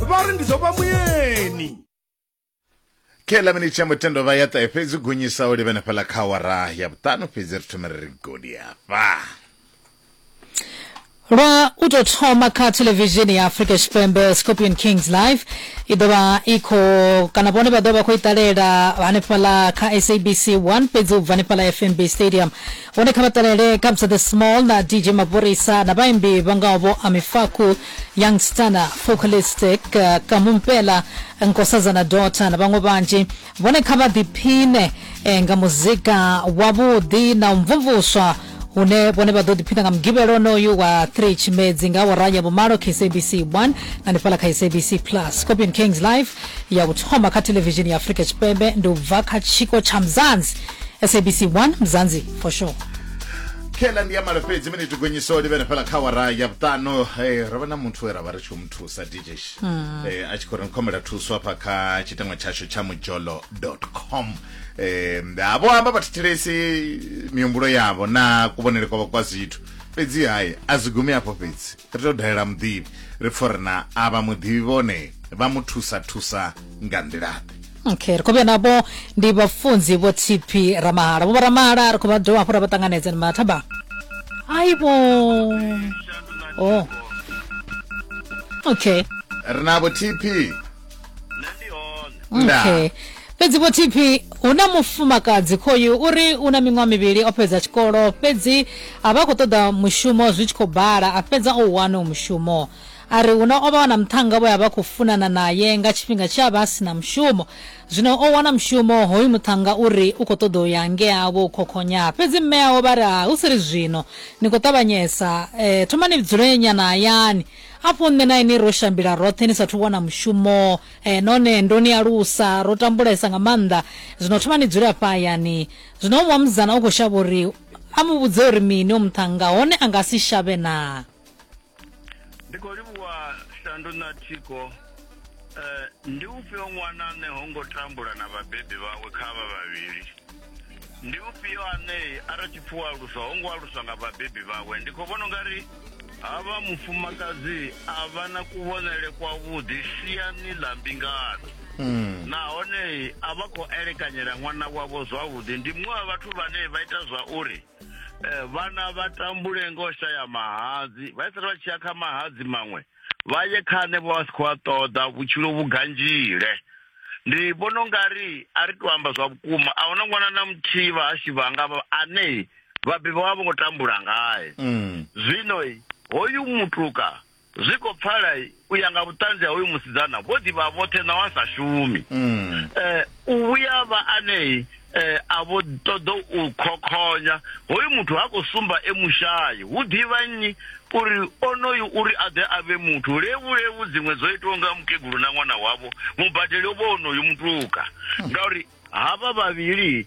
vha ri ndi ḓo vha muyeni khela mini tsha mutendo vha ya ṱahe fhedzi gonyisa u livhene fhala kha wara ya vhuṱanu fhedzi ri thome ri ri godi hafha lwa u tou thoma kha thelevishini ya afrika tshipembe scorpion kings live i ḓo vha i khou kana vhone vha ḓo vha khou i ṱalela hanefhaḽa kha sabc 1 fhedzi u bva hanefhaḽa fnb stadium Vhone kha vha ṱalele Kabza De Small na DJ Maphorisa na vhaimbi vha ngaho vho Amifaku, Young Stunner, Focalistic, Kamu Mpela, Nkosazana Daughter na vhaṅwe vhanzhi. Vhone kha vha ḓiphine eh, nga muzika wavhuḓi na u mvumvuswa hune vhone vha ḓo ḓiphina nga mugivhelo onoyu wa 3 tshimedzi nga awara ya vhumalo kha sabc 1 na nifhala kha sabc plus scorpion kings live ya u thoma kha televishini ya afurika tshipembe ndi u bva kha tshiko tsha mzanzi sabc 1 mzanzi for sure khela ndi ya malo fhedzi mene tigonyisa uri vhene fhela kha wara ya vhuṱanu eh, ro vha na muthu we ra vha ri tshi u muthusa djesh eh, a tshi khou ri nkhomela thuso hafha kha tshitangwa tshashu tsha mujolo com eh, ha vho amba vhathetshelesi mihumbulo yavho na kuvhonele kwavho kwa zwithu fhedzi hayi a zwi gumi afho fhedzi Ri tou dalela muḓivhi ri pfo ri na avha muḓivhi vhone vha mu thusa thusa nga nḓilaḓe. Okay, ri khou vhuya navho ndi vhafunzi vho TP Ramahala. Vho Ramahala ri khou vha dovha hafhu ra vha ṱanganedza ni mathaba. Aibo. Oh. Okay. Ri na vho TP okay fhedzi vho tp hu na mufumakadzi khoyu uri u na miṅwaha mivhili o fhedza tshikolo fhedzi a vha khou ṱoḓa mushumo zwi tshi khou bala a fhedza o wana u mushumo a ri huna o vha wana muṱhanga vho ya vha khou funana naye nga tshifhinga tshe a vha a si na mushumo zwino o wana mushumo hoyu muṱhanga uri u khou ṱoḓa u ya ngea vho khokhonya fhedzi mme awo vha ri ha hu si ri zwino ni khou ṱavhanyesa um thomani dzule nyana hayani Afho nṋe na inwi ro shambila roṱhe ni sathu wana mushumo, eh, nahone ndo ni alusa ro tambulesa nga maanḓa. Zwino thoma ni dzule afha hayani. Zwino omuṅwe musidzana u khou shavha uri a mu vhudze uri mini o muṱhannga, hone a nga si shavhe naa? Ndi khou livhuwa Shandu na Thiko. Eh, ndi ufhio ṅwana ane ho ngo tambula na vhabebi vhawe kha avha vhavhili? ndi ufhio ane a ri tshipfuwa aluswa ho ngo aluswa nga vhabebi vhawe ndi khou vhona ungari havha mufumakadzi a vha na kuvhonele kwavhuḓi siani ḽa mbingano Mm. nahone a vha khou elekanyela ṅwana wavho zwavhuḓi ndi muṅwe wa vhathu vhane vha ita zwa uri eh, vhana vha tambule ngo shaya mahadzi vha isala vha tshi ya kha mahadzi maṅwe vha ye kha hanevho vha si khou a ṱoḓa vhutshilo vhu ganzhile ndi vhona u nga ri a ri to amba zwa vhukuma a huna ṅwana na muthihi vha hashu vhanga ane vhabebi vha vho ngo tambula ngae mm. zwino hoyu mutuka zwi khou pfala u ya nga vhuṱanzi ha hoyu musidzana vho ḓivha vhoṱhe na wa sa shumi um u vhuya vha anei eh, a vho ṱoḓa u khokhonya hoyu muthu ha khou sumba e mushayi hu ḓivha nnyi uri onoyu uri a ḓe a vhe muthu levulevu dziṅwe dzo itiwa nga mukegulu na ṅwana wavho mubadeli o vha onoyu mutuka ngauri havha vhavhili